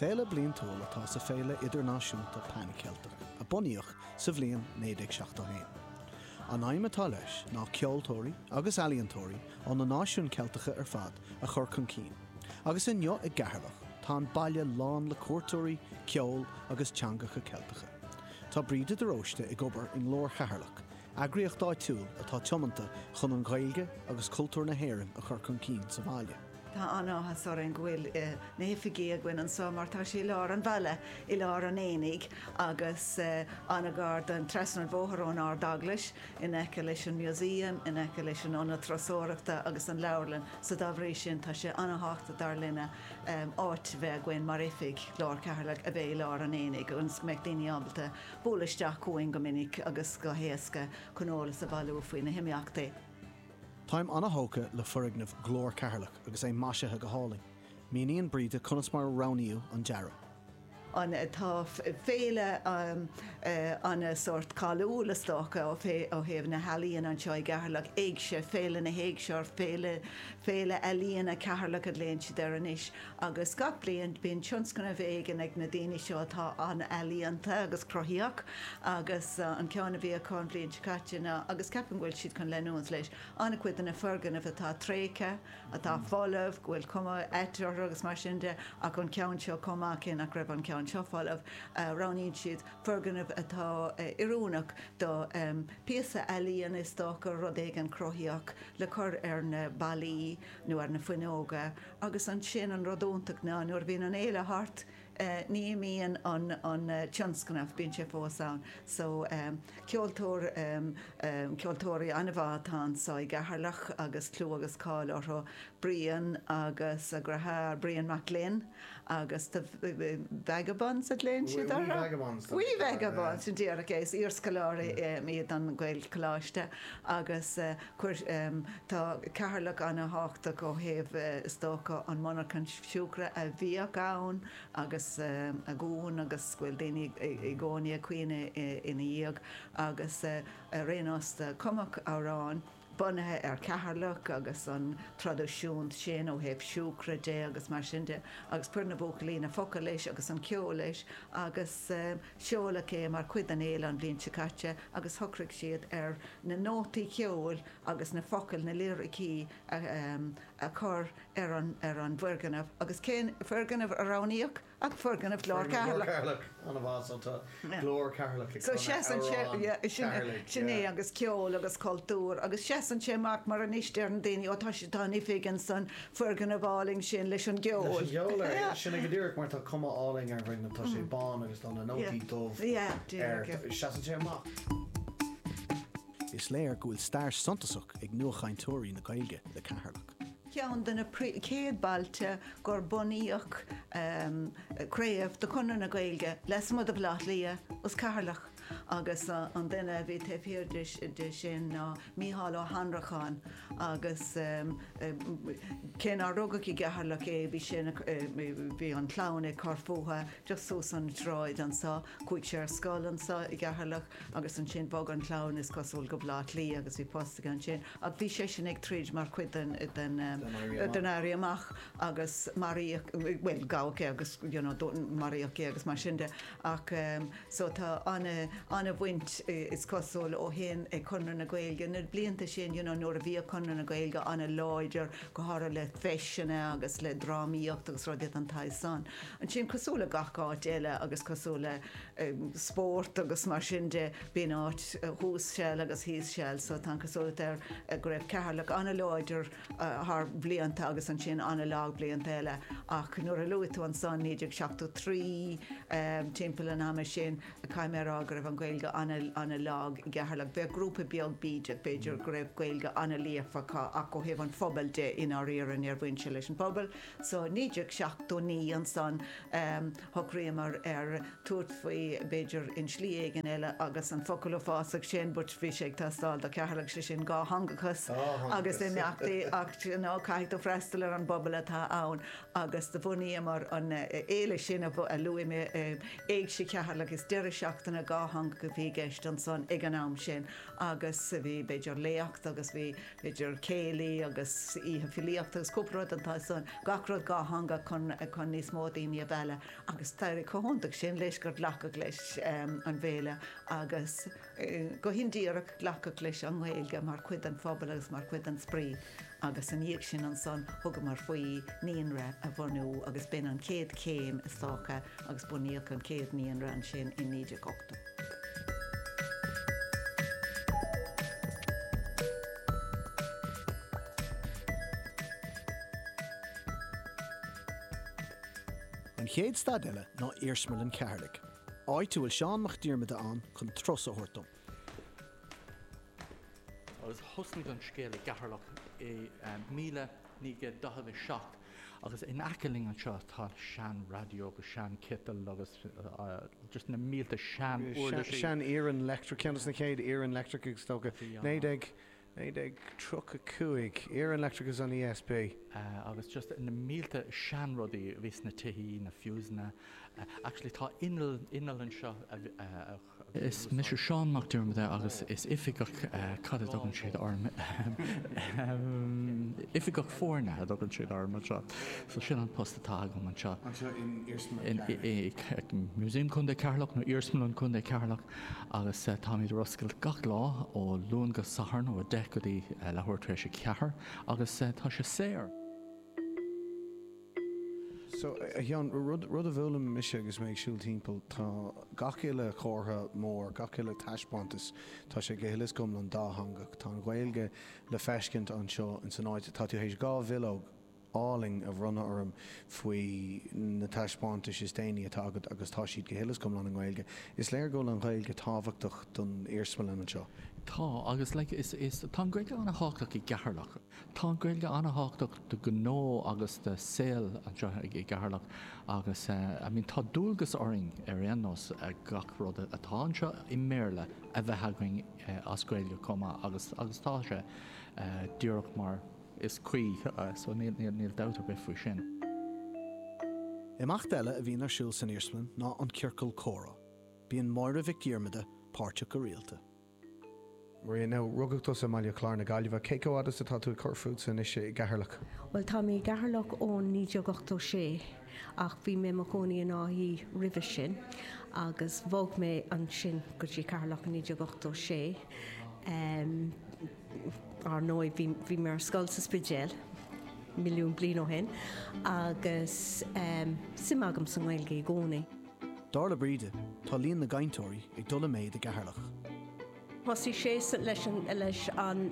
Féile bliantúil atá sa Féile Idirnáisiúnta Pan Cheilteach a bunaíodh sa bhliain 1971. An aidhm atá leis ná ceoltóirí agus ealaíontóirí ó na náisiúin Cheilteacha ar fad a chur chun cinn, agus inniu i gCeatharlach tá an baile lán le cuairteoirí, ceol agus teangacha Ceilteacha. Tá Bríd de Róiste ag obair i nGlór Cheatharlach, eagraíocht áitiúil atá tiomanta chun an Ghaeilge agus cultúr na hÉireann a chur chun cinn sa bhaile. Tá an-áthas orainn go bhfuil na hoifigí againn anseo mar tá sé i lár an bhaile, i lár an aonaigh agus an-ghar don, trasna an bhóthair ón Ard-Eaglais, in aice leis an Museum, in aice leis an Ionad Turasóireachta agus an Leabharlann, so dá bhrí sin tá sé an-thábhachtach dar linne áit a bheith againn mar oifig Ghlór Cheatharlach a bheith i lár an aonaigh agus go mbeidh daoine ábalta bualadh isteach chugainn go minic agus go héasca chun eolas a bhailiú faoi na himeachtaí. Táim an-thógtha le foirgneamh Ghlór Cheatharlach agus é maisithe go hálainn. Míníonn Bríd conas mar a roghnaíodh an dearadh. an tá féile ann sórt cáiliúil is dócha ó ó thaobh na healaíon anseo i gCeatharlach, Éigse, Féile na hÉigse or Féile Féile Ealaíon Cheatharlach a ghlaonn siad air anois. Agus gach bliain bíonn tionscnamh éigin ag na daoine seo atá an-ealaíonta agus cruthaitheach agus an ceann a bhí acu an bhliain seo caite ná, agus ceapaim go bhfuil siad chun leanúint leis, an-chuid de na foirgnimh atá tréigthe, atá folamh, go bhfuil cuma ait orthu agus mar sin de ach an ceann seo chomh maith cé nach raibh an ceann seo folamh, roghnaíonn siad foirgneamh atá oiriúnach do phíosa ealaíon is dócha, rud éigin cruthaitheach le cur ar na ballaí nó ar na fuinneoga. agus ansin an rud iontach ná nuair a bhíonn an fhéile thart ní imíonn an tionscnamh, bíonn sé fós ann. So ceoltóir, ceoltóirí an-mhaith atá anso i gCeatharlach agus clú agus cáil orthu, Brian agus a dheartháir, Brian Mac Gloinn agus Ye Vagabonds a ghlaonn siad orthu? Ye Vagabonds. Ye Vagabonds, sin díreach é, is iarscoláirí iad den Ghaelcholáiste agus cuir im, Tá Ceatharlach an-thábhachtach ó thaobh, is dócha, an mhonarcha siúcra a bhíodh ann agus a dhún agus go bhfuil daoine i gcónaí ag caoineadh ina dhiaidh agus ar aon nós cumadh amhrán bunaithe ar Cheatharlach agus an traidisiún sin ó thaobh siúcra de agus mar sin de agus chuir na buachaillí na focail leis agus an ceol leis agus Seoladh é mar chuid den fhéile an bhliain seo caite agus shocraigh siad ar na nótaí ceoil agus na focail, na liricí, a chur ar an bhfoirgneamh. Agus cén foirgneamh a roghnaíodh ach foirgneamh Ghlór Cheatharlach! Foirgneamh Ghlór Cheatharlach, anamh so tá Glór Cheatharlach ag canadh amhrán Cheatharlaigh, yeah. Sin é agus ceol agus cultúr agus seasann sé amach mar anois deireann daoine 'ó tá an oifig ansan foirgneamh álainn sin leis an gceol. Sin é go díreach, mar tá cuma álainn ar an bhfoirgneamh, tá sé bán agus tá na nótaí dubh air. Seasann sé amach. Is léir go bhfuil stair suntasach ag nuachainteoirí na Gaeilge le Ceatharlach. Ceann de na céad bailte gur bunaíodh craobh de Chonradh na Gaeilge lasmuigh de Bhaile Átha Cliath, is Ceatharlach. agus an duine a bhí taobh thiar de sin ná Mícheál Ó hAnnracháin agus cé nár rugadh i gCeatharlach é bhí sé ina, bhí an chlann ag cur fútha just suas an tsráid anso, chuaigh sé ar scoil anso i gCeatharlach agus ansin bhog an chlann is cosúil go Baile Átha Cliath agus bhí post aige ansin ach bhí seisean ag troid mar chuid den, den, den Éirí Amach agus maraíodh, bhuel gabhadh é agus you know maraíodh é agus mar sin de ach, So tá ana, ana bhaint is cosúil ó shin ag Conradh na Gaeilge, na blianta sin you know nuair a bhíodh Conradh na Gaeilge ana láidir, go háirithe le feiseanna agus le drámaíocht agus rudaí den tsaghas san. Ansin cosúil le gach áit eile agus cosúil le eh spórt agus mar sin de, bíonn áit thuas seal agus thíos seal so tá an cosúlacht air go raibh Ceatharlach ana láidir, thar bhlianta agus ansin an-lag blianta eile ach nuair a luaigh tú ansan 1973 timpeall an ama sin caithfidh mé a rá go raibh an Ghaeilge ana-lag i gCeatharlach. Bheadh grúpa beag bídeach b'fhéidir go raibh Gaeilge ana-líofa acu ach ó thaobh an phobail de i ndáiríre, níor bhain sé leis an bpobal. So 1979 ansan shocraíomar ar tabhairt faoi, b'fhéidir i slí éigin eile agus an focal fásach sin but bhí sé ag teastáil do Cheatharlach, sé sin dhátheangachas agus imeachtaí mar d'you know caithfidh tú freastal ar an bpobal atá ann agus do bhunaíomar an fhéile sin a luaigh mé, Éigse Cheatharlach, is deireadh seachtaine dhátheangach a bhí i gceist ansan ag an am sin agus bhí b'fhéidir léacht agus. b'fhéidir céilí agus oíche filíochta agus cúpla rud den tsórt san, gach rud dhátheangach chun níos mó daoine a mhealladh agus d'éirigh chomh hiontach sin leis gur glacadh leis an bhféile agus go hindíreach glacadh leis an nGaeilge mar chuid den phobal agus mar chuid den spraoi agus ina dhiaidh sin ansan thugamar faoi naíonra a bhunú agus b'in an chéad chéim is dócha agus bunaíodh an chéad naíonra ansin i 1980. An chéad stad eile ná Iarsmalann Cheatharlaigh, áit a bhfuil Seán Mac Diarmada ann chun turas a thabhairt dom. Agus thosnaigh an scéal i gCeatharlach i míle naoi gcéad daichead a seacht Agus in aice linn anseo tá sean radio agus sean ciotal agus just na mílte sean uirlisí. Sean iarann leictreach, ceann dos na chéad iarann leictreach is dócha, naoi déag, naoi déag tríocha cúig, iarann leictreach ins an ESB. Agus just na mílte sean rudaí a bhí sna tithí, na fuseanna, actually tá inneall, inneall anseo a Is mise Seán Mac Diarmada agus is oifigeach, cad a dtugann siad orm, oifigeach foirne a thugann siad orm anseo, so sin an post atá agam anseo. Anseo in Iarsmalann Cheatharlach? In Museum Contae Cheatharlach nó Iarsmalann Contae Cheatharlach agus táimid ar oscailt gach lá ó Luan go Satharn ó 10:00 go dtí leathuair tar éis a ceathair agus tá sé saor. So, a Sheáin, rud a d'fhoghlaim mise agus mé ag siúl timpeall, tá gach uile comhartha mór, gach uile taispeántas, tá sé go huile is go hiomlán dátheangach. Tá an Ghaeilge le feiscint anseo ins an áit, tá tú théis dhá bhileog álainn a bhronnadh orm faoi na taispeántais is déanaí atá agat agus tá siad go huile is go hiomlán i nGaeilge. Is léir go bhfuil an Ghaeilge tábhachtach don iarsmalann anseo. Tá, agus like, is, is, tá an Ghaeilge an-thábhachtach i gCeatharlach. Tá an Ghaeilge an-thábhachtach do ghnó agus do saol anseo i gCeatharlach agus I mean tá dualgas orainn ar aon nós gach rud atá anseo i mBéarla a bheith againn as Gaeilge chomh maith agus agus tá sé díreach mar is cuí so níl dabht ar bith faoi sin. Imeacht eile a bhíonn ar siúl san iarsmalann ná an Ciorcal Comhrá. Bíonn Máire Mhic Dhiarmada páirteach go rialta. Marian, now, rugadh tusa i mBaile Chláir na Gaillimhe. Cé chomh fada is atá tú ag cur fútsa anois i gCeatharlach? Bhuel, tá mé i gCeatharlach ón 1986 ach bhí mé i mo chónaí in Áth Í roimhe sin agus bhog mé ansin go dtí Ceatharlach i 1986. Em, ár ndóigh, bhí, bhí mé ar scoil sa Spidéal, milliún bliain ó shin agus, em, suim agam sa nGaeilge i gcónaí. Dar le Bríde, tá líon na gcainteoirí ag dul i méid i gCeatharlach. Thosaigh sé leis an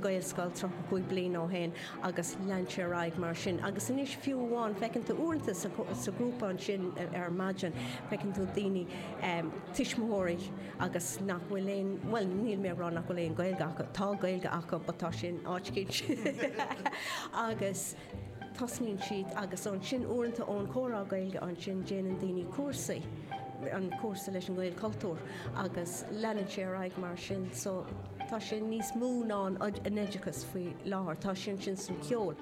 Ghaelscoil 35 bliain ó shin agus lean sé ar aghaidh mar sin. Agus anois fiú amháin, feiceann tú uaireanta sa ghrúpa ansin ar maidin, feiceann tú daoine, tuismitheoirí agus nach bhfuil aon, bhuel níl mé ag rá nach bhfuil aon Ghaeilge acu, tá Gaeilge acu but tá sé in áit éicint agus. Tosnaíonn siad agus ansin uaireanta ón comhrá Gaeilge ansin déanann daoine cúrsaí, an cúrsa leis an Ghaelchultúr agus leanann sé ar aghaidh mar sin. So tá sé níos mó ná an an oideachas faoi láthair, tá sé ansin san cheol.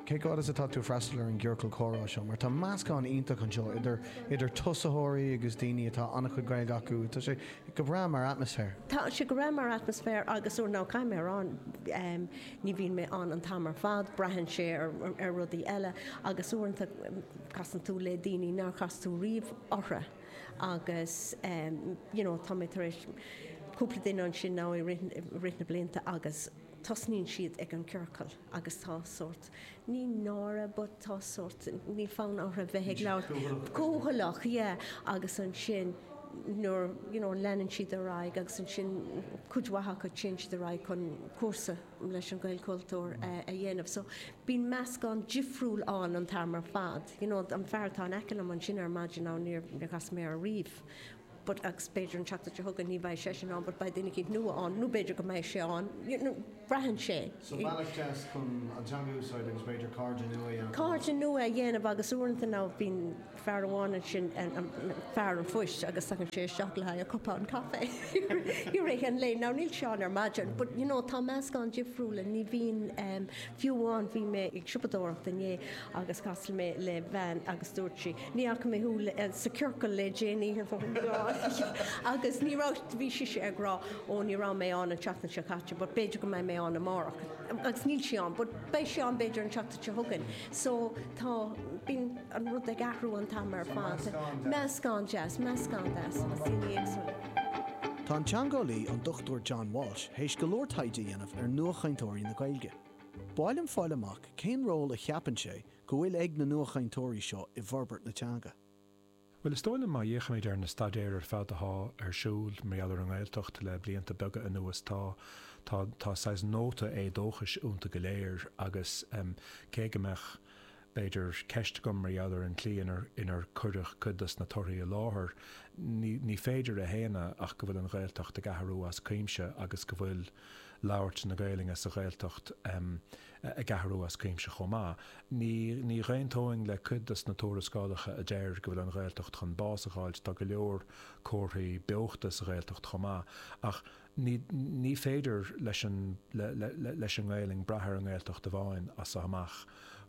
Cé chomh fada is atá tú freastal ar an gciorcal comhrá seo mar tá meascán iontach anseo idir idir tosaitheoirí agus daoine atá an-chuid Gaeilge acu, tá sé go breá mar atmaisféar. Tá sé go breá mar atmaisféar agus uair ná caithfidh mé a rá Ní bhíonn mé ann an t-am ar fad, braitheann sé ar rudaí eile agus uaireanta casann tú le daoine nár chas tú riamh orthu agus you know tá mé tar éis cúpla duine ansin now i rith na blianta agus tosnaíonn siad ag an ciorcal agus tá sórt Ní náire but tá sórt, níl fonn orthu bheith ag labhairt. Cúthaileach. Cúthaileach, yeah. Agus ansin nuair, you know, leanann siad ar aghaidh agus ansin cuid mhaith acu téann siad ar aghaidh chun cúrsa leis an Ghaelchultúr a dhéanamh. So bíonn meascán difriúil ann an t-am ar fad. You know, an fear atá in aice liom ansin ar maidin, á níor chas mé air ariamh. but agus b'fhéidir an tseachtain seo chugainn ní bheidh seisean ann but beidh duine eicínt nua ann nó b'fhéidir go mbeidh sé ann you know braitheann sé. So bealach deas chun an teanga a úsáid agus b'fhéidir cairde nua a dhéanamh ann. Cairde nua a dhéanamh agus uaireanta ná bíonn fear amháin ansin fear an phoist agus tagann sé isteach le haghaidh a chupán caife i rith an lae. Now níl sé ann ar maidin but you know tá meascán difriúil ann ní bhíonn um fiú amháin bhí mé ag siopadóireacht inné agus chas mé le bean agus dúirt sí Ní fhaca mé thú sa ciorcal le déanaí agus ní raibh, bhí sise ag rá oh ní raibh mé ann an tseachtain seo caite but b'fhéidir go mbeidh mé ann amárach agus níl sí ann but beidh sí ann b'fhéidir an tseachtain seo chugainn so tá bíonn an rud ag athrú an t-am ar fad. Meascán deas, meascán deas de dhaoine éagsúla. Tá an teangeolaí, an Dr John Walsh, théis go leor taighde a dhéanamh ar nuachainteoirí na Gaeilge. B'áil liom fáil amach cén ról a cheapann sé go bhfuil ag na nuachainteoirí seo i bhforbairt na teanga. Bhuel, is dóigh liom má fhéachaimid ar na staidéir ar fad athá ar siúl mar gheall ar an nGaeltacht le blianta beaga anuas, tá, tá, tá saghas nóta éadóchais ionta go léir agus cé go mbeadh b'fhéidir ceist agam mar gheall ar an tslí inar, inar cuireadh cuid dos na torthaí i láthair, ní, ní féidir a shéanadh ach go bhfuil an Ghaeltacht ag athrú as cuimse agus go bhfuil labhairt na Gaelainne sa Ghaeltacht, ag athrú as cuimse chomh maith. Ní dhaontóinn le cuid dos na tuarascálacha a deir go bhfuil an Ghaeltacht chun bás a dh'fháilt, tá go leor comharthaí beochta sa Ghaeltacht chomh maith, ach ní féidir leis an nGaelainn brath ar an nGaeltacht amháin as so amach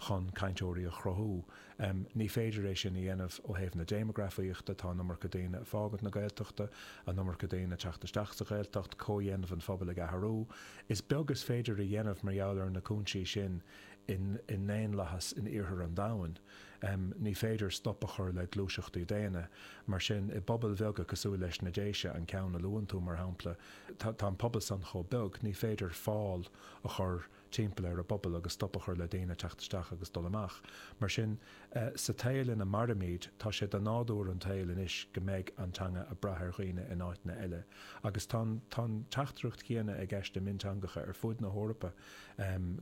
chun cainteoirí a chruthú. em ní féidir é sin a dhéanamh ó thaobh na déimeagrafaíochta, tá an iomarca daoine a' fágaint na Gaeltachta, an iomarca daoine a' teacht isteach sa Ghaeltacht, comhdhéanamh an phobail ag athrú, is beag is féidir a dhéanamh mar gheall ar na cúinsí sin in, i ndaonlathas in iarthar an domhain, em ní féidir stop a chur le gluaiseachtaí daonna, mar sin i bpobail bheaga cosúil leis na Déise, an ceann a luann tú mar shampla, tá, tá an pobal san chomh beag, ní féidir fál a chur. timpeall ar an bpobal agus stop a chur le daoine teacht isteach agus dul amach. Mar sin, sa saol ina mairimid, tá sé de nádúr an tsaoil anois go mbeidh an teanga ag brath ar dhaoine in áiteanna eile. Agus tá an tá an teachtaireacht chéanna i gceist i mionteangacha ar fud na hEorpa,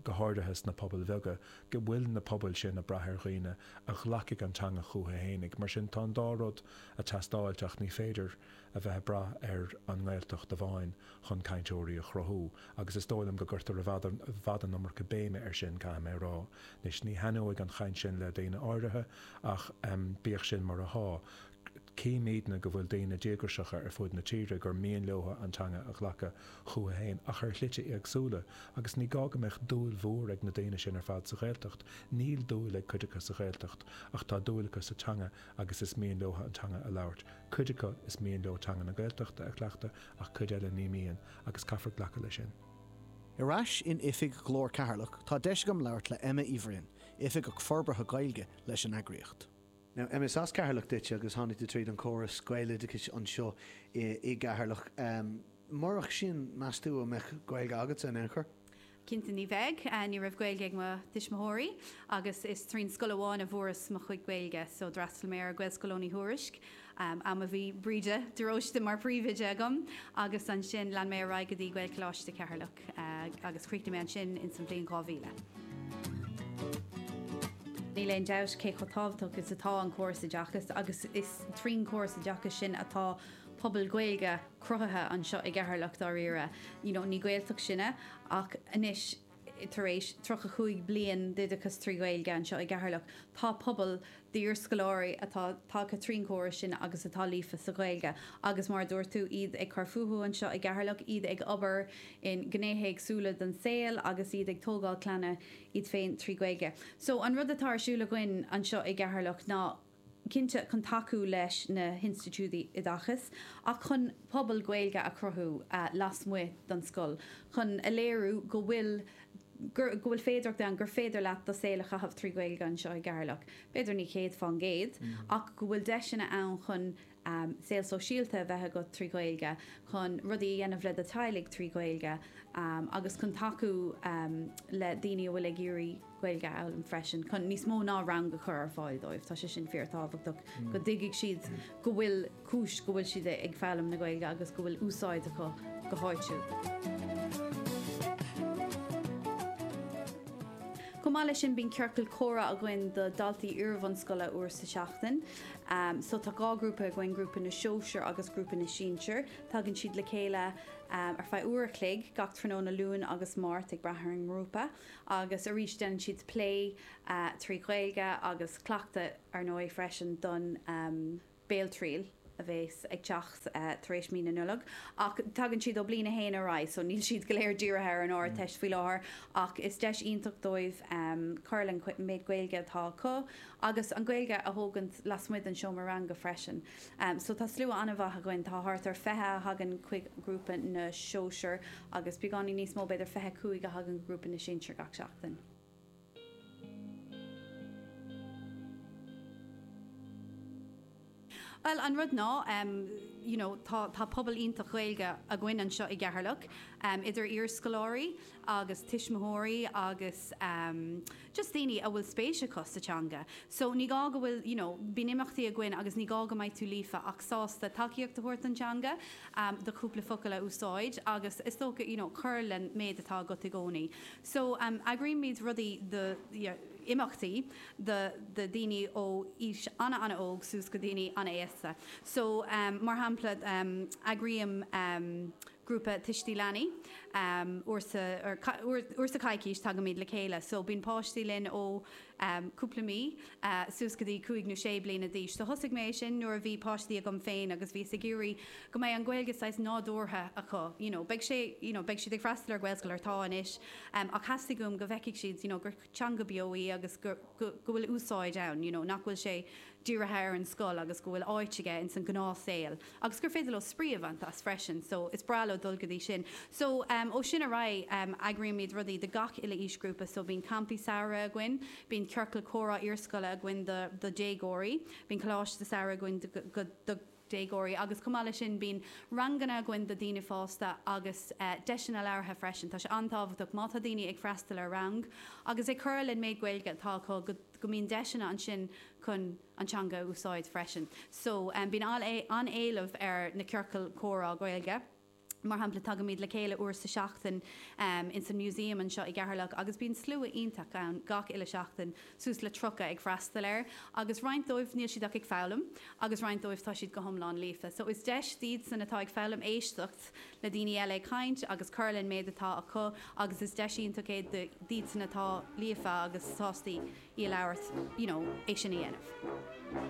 go háirithe sna pobail bheaga, go bhfuil na pobail sin ag brath ar dhaoine a ghlacfaidh an teanga chucu fhéinig. Mar sin, tá an dá rud ag teastáilt ach ní féidir. a bheith ag brath ar an nGaeltacht amháin chun cainteoirí a chruthú agus is dóigh liom go gcuirtear i bhfad i bhfad an iomarca béime air sin, caithfidh mé a rá. Anois, ní thaitneoidh an chaint sin le daoine áirithe ach bíodh sin mar atá, címidne go bhfuil daoine díograiseacha ar fud na tíre gur mian leotha an teanga a ghlacadh chucu féin ach ar shlite éagsúla agus ní gá go mbeadh dúil mhór ag na daoine sin ar fad sa Ghaeltacht. Níl dúil ag cuid acu sa Ghaeltacht ach tá dúil acu sa teanga a agus is mian leotha an teanga a labhairt. Cuid acu, is mian leo teanga na Gaeltachta a chleachtadh ach cuid eile ní mian agus caithfear glacadh leis sin. Ar ais in oifig Ghlór Ceatharlach tá deis agam labhairt le Emma Uí Bhroin, Oifigeach Forbartha Gaeilge leis an eagraíocht. Now, Emma, is as Ceatharlach duitse agus tháinig tú tríd an córas Gaeloideachais anseo i gCeatharlach. Murach sin, meas tú an mbeadh Gaeilge agatsa in aon chor? Cinnte ní bheidh. Ní raibh Gaeilge ag mo tuismitheoirí agus is trín scoil amháin a bhfuaireas mo chuid Gaeilge so d'fhreastal mé ar Gaelscoil Eoghain Uí Thuairisc, am a bhí Bríde de Róiste mar príomhoide agam agus ansin lean mé ar aghaidh go dtí Gaelcholáiste Cheatharlach agus chríochnaigh mé ansin ins an bhliain 2000. Níl aon dabht cé chomh tábhachtach is atá an córas oideachas agus is trín córas oideachais sin atá. pobal Gaeilge cruthaithe anseo i gCeatharlach dáiríre, you know ní Gaeltacht sinne ach anois tar éis tríocha cúig bliain d'oideachas trí Ghaeilge anseo i gCeatharlach tá pobal d'iarscoláirí atá tagtha trín córas sin agus atá líofa sa Ghaeilge agus mar a dúirt tú iad ag cur fúthu anseo i gCeatharlach, iad ag obair in gnéithe éagsúla den saol agus iad ag tógáil clainne iad féin trí Ghaeilge. So an rud atá ar siúl againn anseo i gCeatharlach ná. cinnte chun tacú leis na hinstitiúidí oideachais ach chun pobal Gaeilge a chruthú lasmuigh den scoil chun a léiriú go bhfuil go bhfuil féidearthacht ann gur féidir leat do saol a chaitheamh trí Ghaeilge anseo i gCeatharlach, b'fhéidir ní 100% ach go bhfuil deiseanna ann chun saol sóisialta a bheith agat trí Ghaeilge, chun rudaí a dhéanamh le do teaghlaigh trí Ghaeilge agus chun tacú le daoine a bhfuil ag iarraidh Gaeilge a fhoghlaim freisin, chun níos mó ná rang a chur ar fáil dóibh. Tá sé sin fíor tábhachtach go dtuigfidh siad go bhfuil cúis go bhfuil siad ag foghlaim na Gaeilge agus go bhfuil úsáid acu go háitiúil. Chomh maith leis sin bíonn ciorcal comhrá againn do daltaí iarbhunscoile uair sa tseachtain. So tá dhá ghrúpa againn, grúpa na sóisear agus grúpa na sinsear. Tagann siad le chéile ar feadh uair a chloig gach tráthnóna Luan agus Máirt ag brath ar an ngrúpa. Agus arís déanann siad plé trí Ghaeilge agus cleachtadh ar ndóigh freisin don bhéaltriail a bhéas ag teacht tar éis mí na Nollag. Ach tagann siad ó bliain a haon ar aghaidh so níl siad go léir dírithe ar an Ardteist faoi láthair ach is deis iontach dóibh cur len méid Gaeilge atá acu. agus an Ghaeilge a thógaint lasmuigh den seomra ranga freisin. So tá slua an-mhaith againn, tá thart ar 20 a thagann chuig grúpa na sóisear agus beagáinín níos mó, b'fhéidir 25 a thagann go grúpa na sinsear gach seachtain. Bhuel, an rud ná, em, you know, tá, tá pobal iontach Gaeilge againn anseo i gCeatharlach, em, idir iarscoláirí agus tuismitheoirí agus, em, just daoine a bhfuil spéis acu sa teanga. So, ní gá go bhfuil, you know, bíonn imeachtaí againn agus ní gá go mbeidh tú líofa ach sásta tacaíocht a thabhairt don teanga, em, do chúpla focal a úsáid agus is dócha, you know, cur len méid atá agat i gcónaí. So, em, eagraímid rudaí do, yeah, imeachtaí. do dhaoine ó aois an-an-óg suas go daoine an-aosta. So, mar shampla, eagraím grúpa Tuistí is Leanaí. Uair sa choicís tagaimid le chéile. So, bíonn páistí linn ó cúpla mí suas go dtí cúig nó sé bliana d'aois. So, thosaigh mé é sin nuair a bhí páistí agam féin agus bhíos ag iarraidh go mbeidh an Ghaeilge saghas nádúrtha acu, you know. Beidh sé, you know, beidh siad ag freastal ar Ghaelscoil nó tá anois ach theastaigh uaim go bhfeicfidh siad, you know, gur. teanga beo í agus go bhfuil úsáid ann, you know, nach bhfuil sé dírithe ar an scoil agus go bhfuil áit aige ins an gnáthshaol agus gur féidir leo spraoi a bhaint as freisin so is breá leo dul go dtí sin. So ehm ó sin ar aghaidh ehm eagraímid rudaí do gach uile aoisghrúpa so bíonn campaí samhraidh againn, bíonn ciorcal comhrá iarscoile againn do do dhéagóirí, bíonn coláiste samhraidh againn do déagóirí agus chomh maith leis sin bíonn ranganna againn do daoine fásta agus deiseanna labhartha freisin. Tá sé an-tábhachtach má tá daoine ag freastal ar rang agus ag cur len méid Gaeilge atá acu go mbíonn deiseanna ansin chun an teanga a úsáid freisin. So bíonn an-éileamh ar na ciorcail comhrá Gaeilge. Mar shampla, tagaimid le chéile uair sa seachtain ins an Museum anseo i gCeatharlach agus bíonn slua iontach ann gach uile seachtain, suas le 30 ag freastal air, agus roinnt dóibh níl siad ach ag foghlaim agus roinnt dóibh tá siad go hiomlán líofa. So is deis d'iad san atá ag foghlaim éisteacht le daoine eile ag caint agus cur len méid atá acu agus is deis iontach é d'iad san atá líofa agus sásta í a labhairt, you know, é sin a dhéanamh.